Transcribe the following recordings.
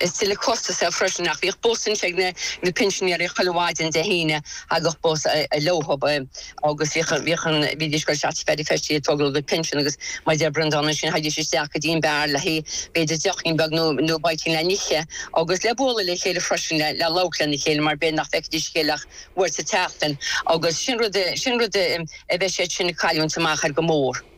Is tuilleadh costas é freisin, ach bhíodh bus ansin ag na pinsinéirí chuile mhaidin Dé hAoine, thagadh bus leothab agus bhídís go teach Pheaidí Feistí ag tógáil a gcuid pinsean agus mar a deir Breandán ansin, thagaidís isteach go dtí an beár le haghaidh b'fhéidir deochín beag nó bite-ín le n-ithe agus le bualadh le chéile freisin le labhairt lena chéile mar b'fhéidir nach bhfeicfidís a chéile ach uair sa tseachtain agus sin rud a bheidh siad sin ag cailliúint amach air go mór.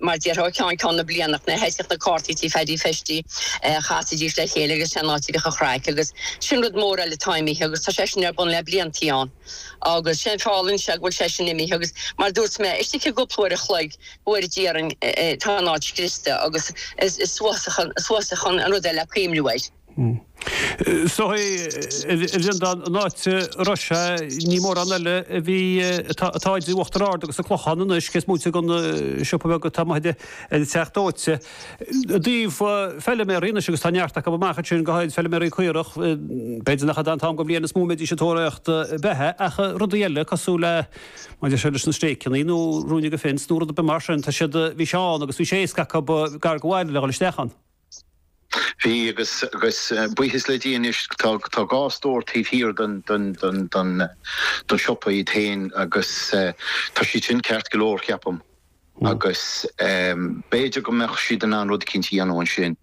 mar déarfá, ó cheann ceann na bliana, nuair a thoisigh na cártaí tí Pheaidí Feistí a chasaidís le chéile agus sé an áit a bhíodh an chraic agus sin rud mór eile atá imithe agus tá sé sin ar bun le bliantaí ann agus sé'n feall ansin go bhfuil sé sin imithe agus mar dúirt mé, istigh i gcúpla uair a chloig, go bhfuair deireadh, tá an áit scriosta agus is uafásach, uafásach an rud é le cuimniú air. Seo é, ba bheannacht an áit, arae, níl mórán eile a bhí, atá idir Uachtar Ard agus an Clochán anois, cé is móite den siopa beag atá amuigh ag an Teach Dóite. I dtaobh feiliméaraí anois agus tá neart acu amach ansin, go háirid feiliméaraí caorach, b'fhéidir nach fada an t-am den bhliain is mó a mbeidís ag tóraíocht beatha ach rudaí eile cosúil le, maidir seo leis na stéiceannaí nó ruainne de fence nó rud ar bith mar sin, tá siad, bhí sé ann agus bhí sé éasca acu gar go mhaith le dhul isteach ann. Bhí, agus buíochas le Dia anois tá dhá stór taobh thiar den siopa iad féin agus tá siad sin ceart go leor, ceapaim, agus b'fhéidir go mbeadh siad in ann rud eicínt a dhéanamh ansin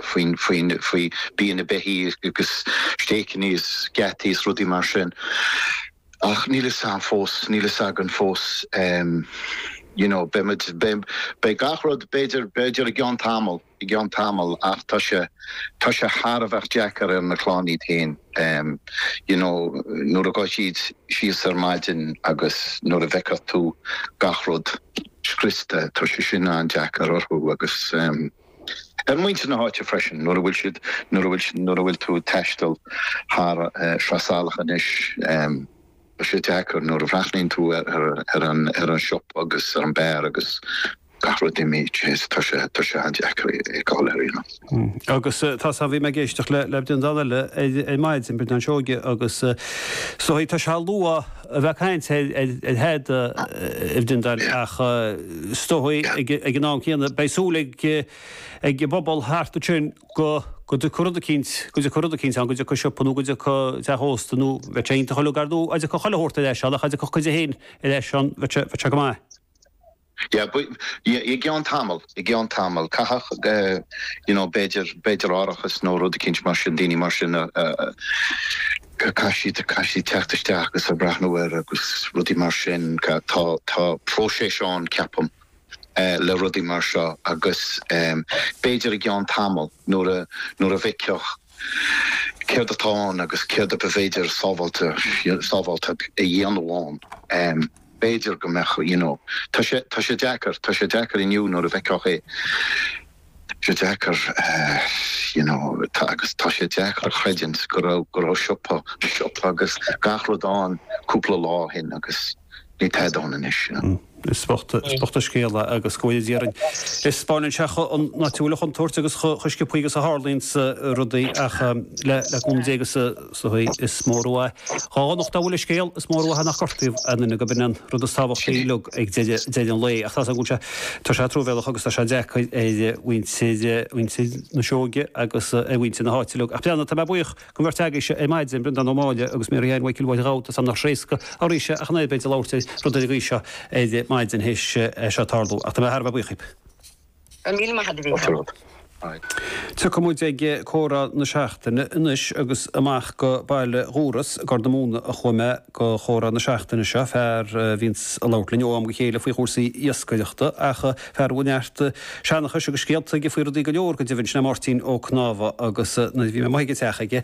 faoi bia na beithí agus stéiceanna is geataí is rudaí mar sin. Ach níl fhios a'am fós, níl fhios againn fós em you know beidh muid, beidh, beidh gach rud b'fhéidir, b'fhéidir i gceann tamaill, i gceann tamaill ach tá sé, tá sé thar a bheith deacair ar na clann iad féin em you know nuair a gcuaigh siad síos ar maidin agus nuair a bhfeiceann tú gach rud scriosta tá sé sin an-deacair orthu agus em. ar mhuintir na háite freisin, nuair a bhfuil siad, nuair a bhfuil, nuair a bhfuil tú ag taisteal thar Shraith Salach anois, tá sé deacair, nuair a bhreathnaíonn tú ar, ar an, ar an siopa agus ar an beár agus gach rud imí, jeez, tá sé, tá sé an-deacair é a fheiceáil ar ndóigh. Agus tá, tá, bhí mé ag éisteacht le, le Breandán eile ar, ar maidin, Breandán Seoige agus, so, tá sé luath, a bheith ag caint ar thada mar a déarfá ach is dóigh ag an am céanna beidh súil ag an bpobal thart ansin go dtiocfaidh rud eicínt, go dtiocfaidh rud eicínt ann, go dtiocfaidh siopa nó go dtiocfaidh teach ósta nó bheadh sé iontach uiliug ar ndóigh dá dtiocfadh chuile shórt ar ais ann ach dá dtiocfadh cuid de féin ar ais ann bheadh sé go maith. Yeah, but yeah, i gceann tamall, i gceann tamall, caithfidh you know, b'fhéidir, b'fhéidir árachas nó rud eicínt mar sin, daoine mar sin a, a, caithfidh siad, caithfidh siad teacht isteach agus a' breathnú air agus rudaí mar sin, tá, tá próiseas ann ceapaim le rudaí mar seo agus b'fhéidir i gceann tamall nuair a, nuair a bhfeicfeadh céard atá ann agus céard ab fhéidir sábháilte, sábháilte a dhéanamh ann. b'fhéidir go mbeadh, you know. Tá sé, tá sé deacair, tá sé deacair inniu nuair a bhfeicfeá é, tá sé deacair, you know, tá, agus tá sé deacair a chreidiúint go raibh, go raibh siopa, siopa agus gach rud ann cúpla lá ó shin agus níl tada ann anois, you know. Is bocht, is bocht an scéal é agus go bhfóire Dia orainn, spáineann sé chomh, an áit a bhfuil an chontúirt agus chomh, chomh sciopthaí agus a tharlaíonns rudaí ach le, le cúnamh Dé agus. sea, is mór an mhaith, dhá dhonacht dá bhfuil an scéal, is mór an mhaith nach gortaíodh aon duine, gurb in an rud is tábhachtaí uilig ag deireadh an lae. Ach tá 's agam go bhfuil sé, tá sé truamhéalach agus tá sé deacair ar mhuintir, mhuintir na Seoighe agus ar mhuintir na háite uilig. Ach breathnaigh, tá mé buíoch den bheirt agaibhse ar maidin, Breandán Ó Máille agus Mary Ann Mhic Ghiolbháin Ghabh tusa amnach thréasca an rí seo ach an oiread, a bheith ag labhairt ar rud ar an gcaoi seo ar maidin théis seo tarlú. Ach tá mé thar a bheith buíoch dhaoibh. Go raibh míle maith a'd, a Mhícheál. Tiocfaidh muid ag comhrá na seachtaine anois agus amach go Baile Dhúrois i gCorr na Móna a chuaigh mé go comhrá na seachtaine seo, fear a bhíonns a' labhairt linn ó am go chéile faoi chúrsaí iascaireachta ach fear a bhfuil neart seanchais agus scéalta aige faoi rudaí go leor, go deimhin, sin é Máirtín Ó Cnámha agus nuair a bhí mé amuigh ag an teach aige,